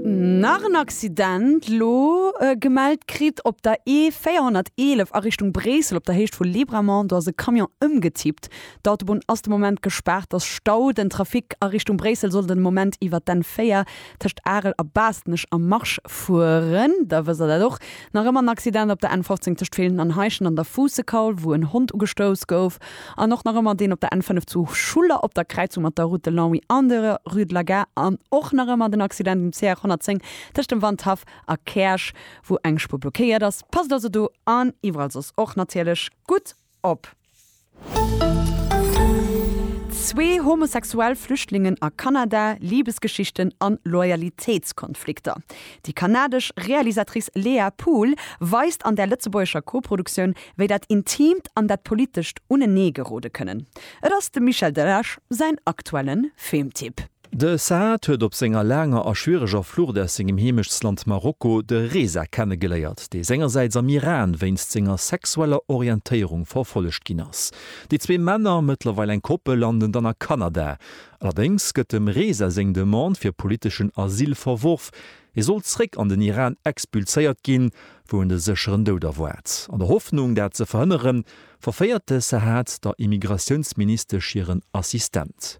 Nach en Accident lo gemellt kritt op der E 411 a Richtung Bréissel op der Héicht vu Libramont. Do ass e Camion ëmgetippt. D'Autobunn ass de Moment gespaart, ass Stau. Den Trafic a Richtung Bréissel soll den Moment iwwert d'N 4 tëscht Arel a Baastnech am Marsch fueren. Da wësst der dat och. Nach ëmmer en Accident op der N 15 tëscht Villen an Heischent an der Fuussekaul, wou en Hond ugestouss gouf. An och nach ëmmer deen op der N5 zu Schuller op der Kräizung mat der Route de Longwy an der Rue de la Gare. An och nach ëmmer den Accident um CR 110 tëscht dem Wandhaff a Käerch, wou eng Spuer blockéiert ass. Passt also do an iwwerall soss och natierlech gutt op. Zwee homosexuell Flüchtlingen a Kanada, Libesgeschichten an Loyalitéitskonflikter. Déi kanadesch Realisatrice Léa Pool weist an där lëtzebuergescher Koproduktioun wéi dat Intiimt an dat Politescht unenee gerode kënnen. Et ass dem Michel Delage säin aktuelle Filmtipp. De Saad huet op senger laanger a schwiereger Flucht aus sengem Heemechtsland Marokko de Reza kennegeléiert, dee sengersäits am Iran wéinst senger sexueller Orientéierung verfollegt ginn ass. Déi zwee Männer, mëttlerweil eng Koppel, landen dann a Kanada. Allerdéngs gëtt dem Reza seng Demande fir politeschen Asyl verworf, Hie sollt zréck an den Iran expulséiert ginn, wou en de sécheren Doud erwaart. An der Hoffnung, dat ze verhënneren, verféiert de Sahat der Immigratiounsministesch hiren Assistent.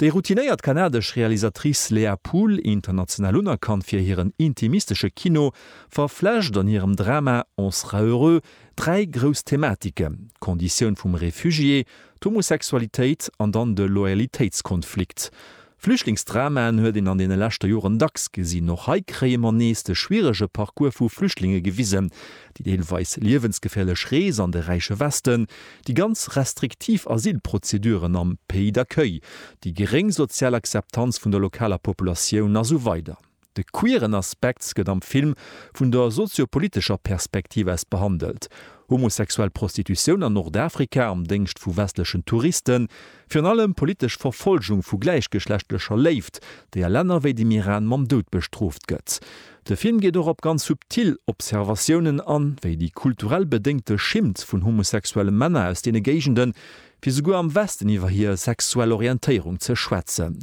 Déi routinéiert kanadesch Realisatrice Léa Poole, international unerkannt fir hiren intimistesche Kino, verflecht an hirem Drama On sera heureux dräi grouss Thematiken, d'Konditioun vum Refugié, d'Homosexualitéit an dann de Loyalitéitskonflikt. Flüchtlingsdramaen huet een an deene leschte Joren dacks gesinn. Och hei kréie mer nees de schwierege Parcours vu Flüchtlinge gewisen, déi deelweis liewensgeféierlech Rees an de räiche Westen, déi ganz restriktiv Asylprozeduren am Pays d'accueil, déi geréng sozial Akzeptanz vun der lokaler Populatioun a sou weider. De queeren Aspekt gëtt am Film vun der sozio-politescher Perspektiv aus behandelt. Homosexuell Prostitutioun an Nordafrika am Déngscht vu westlechen Touristen, virun allem politesch Verfolgung vu gläichgeschlechtlecher Léift, déi a Länner wéi dem Iran mam Doud bestrooft gëtt. De Film geet och op ganz subtil Observatiounen an, wéi déi kulturell bedéngte Schimmt vun homosexuelle Männer aus deene Géigenden, fir souguer am Westen iwwer hir sexuell Orientéierung ze schwätzen.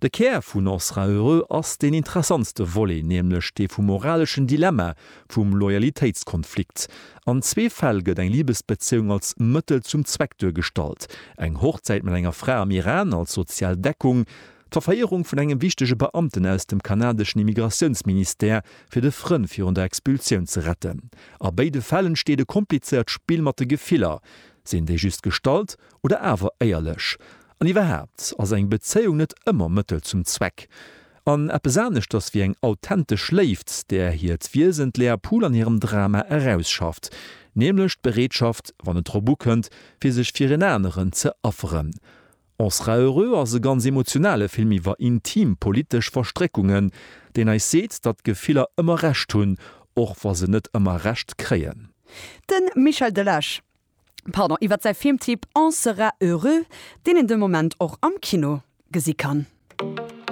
De Kär vun On sera heureux ass deen interessantste Volet, nämlech dee vum moraleschen Dilemma, vum Loyalitéitskonflikt. An zwee Fäll gëtt eng Libesbezéiung als Mëttel zum Zweck duergestallt, eng Hochzäit mat enger Fra am Iran als sozial Deckung, d'Verféierung vun engem wichtege Beamten aus dem kanadeschen Immigratiounsministère, fir de Frënn virun der Expulsioun ze retten. A béide Fäll entsteet e komplizéiert Spill mat de Gefiller. Sinn déi just gestallt Oder awer éierlech. An iwwerhaapt, ass eng Bezéiung net ëmmer Mëttel zum Zweck? An eppes aneschters wéi eng authentesch Léift, där hiert Wiesen d'Léa Pool an hirem Drama erausschafft, nämlech d'Bereetschaft, wann et drop ukënnt, fir sech fir en aneren ze afferen. On sera heureux ass e ganz emotionale Film iwwer intim politesch Verstréckungen, deen eis seet, datt d'Gefiller ëmmer Recht hunn, och wa se net ëmmer Recht kréien. De Michel Delage pardon, iwwer säi Filmtipp On sera heureux, deen een de Moment och am Kino gesi kann.